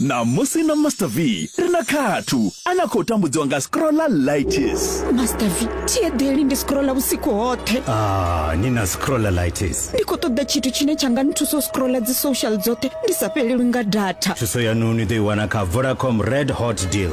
ṋamusi na master v ri na khathu a na khou tambudziwa nga scrolla lightis master v thi eḓeli ndi scrolla vhusiku hoṱhe ah, ni na scrolla lightis ndi khou ṱoḓa tshithu tshine tsha nga nthusa u scrolla dzi social dzoṱhe ndi sa fhelelwi nga data thuso yanu ni ḓo i wana kha vodacom red hot deal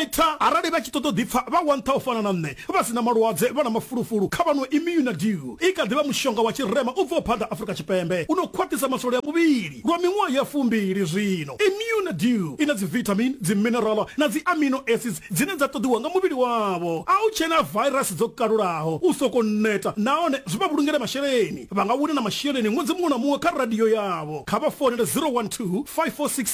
eita arali vha tshi ṱoḓa ḓipfa vha wantha u fana na nṋe vha sina malwadze vha na mafulufulu kha vhano imuna dew i kha ḓivha mushonga wa tshirema u bvaho phanḓa afurika tshipembe u no khwaṱhisa masole a muvhili lwa miṅwaha ya fumbili zwino imuna dew i na dzivitamin dziminerala na dzi amino acids dzine dza ṱoḓiwa nga muvhili wavho a u tshena virus dzo kalulaho u soko neta nahone zwi vha vhulungele masheleni vha nga wina na masheleni ṅwedzi muṅwe na muṅwe kha radio yavho kha vha founele 012 546